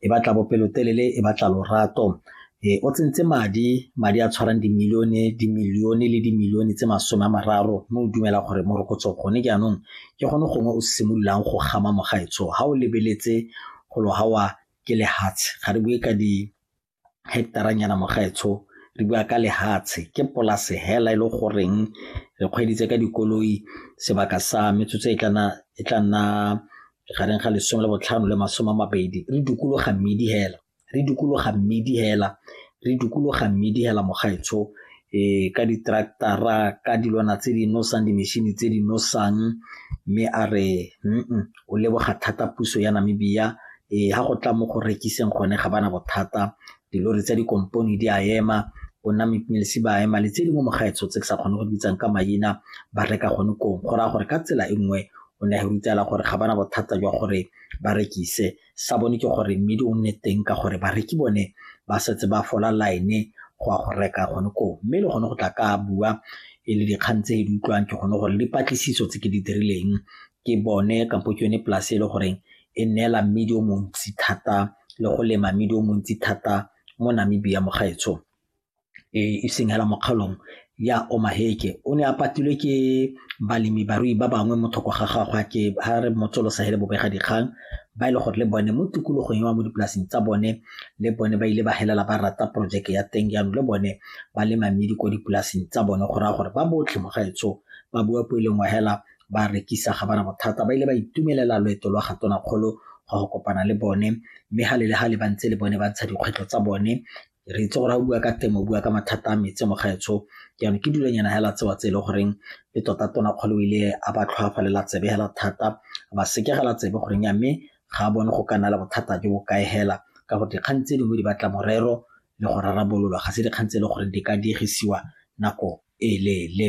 e batla bopelotelele e batla lorato e o tsentse madi madi a tshwarang dimilione dimilione le dimilione tse masome a mararo mme o dumela gore morokotso gone jaanong ke gone gongwe o simololang go gama mogaetsho ga o lebeletse go lo gawa ke lehatshe ga re bue ka di hectaranyana mogaetsho re bua ka lehatshe ke polase hela e le goreng re kgweditse ka dikoloi sebaka sa metsotso e tla nna gareng ga lesome le botlhano le masome a mabedi re dukologa mmidi hela re dukologa mmidi hela re dukologa mmidi hela mogaetsho e ka ditractara ka dilwana tse di nosang dimešhini tse di nosang mme a re mm o leboga thata puso ya namibia e ga go tla mo go rekiseng gone ga bana bothata dilori tsa dikompone di a ema ona mepilisi ba ema le tse di mo mogaetsho tse ke sa kgone go bitsang ka maina ba reka gone kong go raya gore ka tsela e nngwe o ne a rutela gore ga bana bothata jwa gore ba rekise sa bone ke gore mmidi o nne teng ka gore bareki bone ba setse ba fola line go ya go reka gone koo mme le gone go tla ka bua e le dikgang tse di utlwang ke gone gore dipatlisiso tse ke di dirileng ke bone kampo ke yone polase e le goreng e neela mmidi o montsi thata le go lema mmidi o montsi thata mo Namibia mo gaetsho e seng hela mo kgaolong ya Omaheke o ne a patilwe ke balemi barui ba bangwe mo thoko ga gagwe ke ha re motsolosa hele bobega dikgang ba e le gore le bone mo tikologong ya mo dipolaseng tsa bone le bone ba ile ba helela ba rata porojeke ya teng jaanong le bone ba lema mmidi ko dipolaseng tsa bone go raya gore ba botlhe mo gaetsho ba bua po e leng wa hela ba rekisa ga bana bothata ba ile ba itumelela loeto lwa ga tonakgolo go go kopana le bone mme ga le le ga le ba ntse le bone ba ntsha dikgwetlho tsa bone re itse gore ga o bua ka temo o bua ka mathata a metsi mo gaetsho jaanong ke dulanyana hela tsewa tse e leng goreng le tota tona kgolo ile a ba tlhoafalela tsebe hela thata ba sekegela tsebe goreng ya mme ga a bone go ka nna le bothata jo bo kae hela ka gore dikgang tse dingwe di batla morero le go rarabololwa ga se dikgang tse e leng gore di ka diegisiwa nako e leele